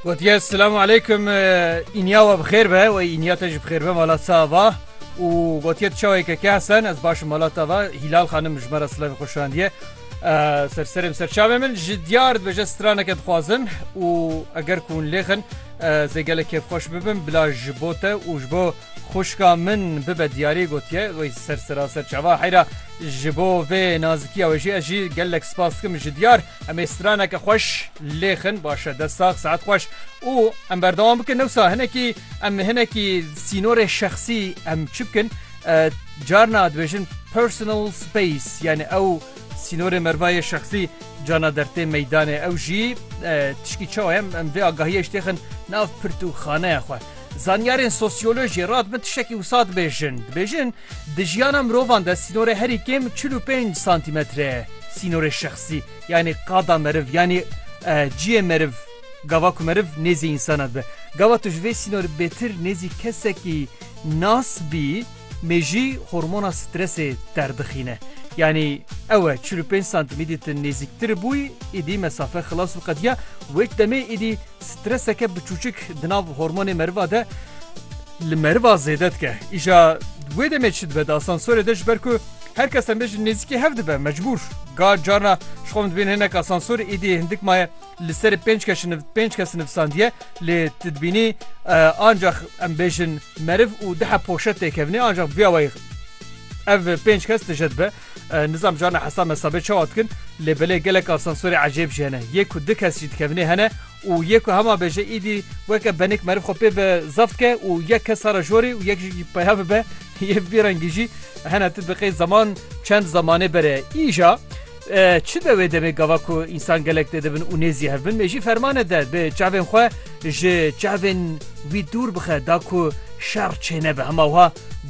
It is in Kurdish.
Gotiye Selamu Aleykum înya we bixêr be we înya te ji bixêr be mala ça va û gotiye çaweke ke sen ez baş mala te va hîlal xanim ji me re silavê xwe şandiye ser serê ser çavê min ji diyar dibêje straneke dixwazin û eger ku hûn lêxin zê gelek kêfxweş bibin bila ji bo te û ji bo xuşka min bibe diyarê gotiye wê ser seraser çava heyra ji bo vê nazikiya wê jî ez jî gelek spas dikim ji diyar Em ê straneke xweş lêxin baş e dest sax saet xweş û em berdewam bikin newsa hinekî em hinekî sînorê şexsî em çi bikin carna dibêjin personal space yani ew sînorê mervayê şexsî cana dertê meydanê ew jî tişkî çawa em em vê agahiye ji têxin nav pirt û xaneya xwe. Zanyarên sosyolojiyê rat bin tiştekî wisa dibêjin dibêjin Di jiyana mirovan de sînorê herî kêm çil û pênc santîmetre ye. Sînorê şexsî yanî qada meriv yanî ciyê meriv gava ku meriv nêzî însanan dibe. Gava tu ji vê sînorê bêtir nêzî kesekî nas bî mêjî hormona stresê derdixîne. Yanî ew e çil û pênc santîmîdî tu nêzîktir bûyî îdî mesafe xilas û qediya wê demê îdî Streseke biçûçik di nav hormonê meriva de li meriva zêde dike. Îja wê demê çi dibe di asansorê de ji ber ku her kes em bêjin nêzîkî hev dibe mecbûr. Ga carna ji xwe min dibên hinek asansor êdî hindik maye li serê pênc keş pênc kes nivsandiye lê tu dibînî ancax em bêjin meriv û dihe poşet têkevnê ancax biya wayî ev pênc kes tije dibe. Nizam carna hesa mesabe çawa dikin lê belê gelek asansûrê ecêb jî hene. Yê ku du kes jî dikevnê hene û yê ku hema bêje îdî weke benik meriv xwe pê ve zaf dike û yek kes sara jorê û yek jî peya bibe yê bi vî rengî jî hene tu diqê zeman çend zemanê bere îja çi de wê demê gava ku însan gelek tê dibin û nêzî hev bin mêjî fermane de bi çavên xwe ji çavên wî dûr bixe da ku şer çêne bi hema wiha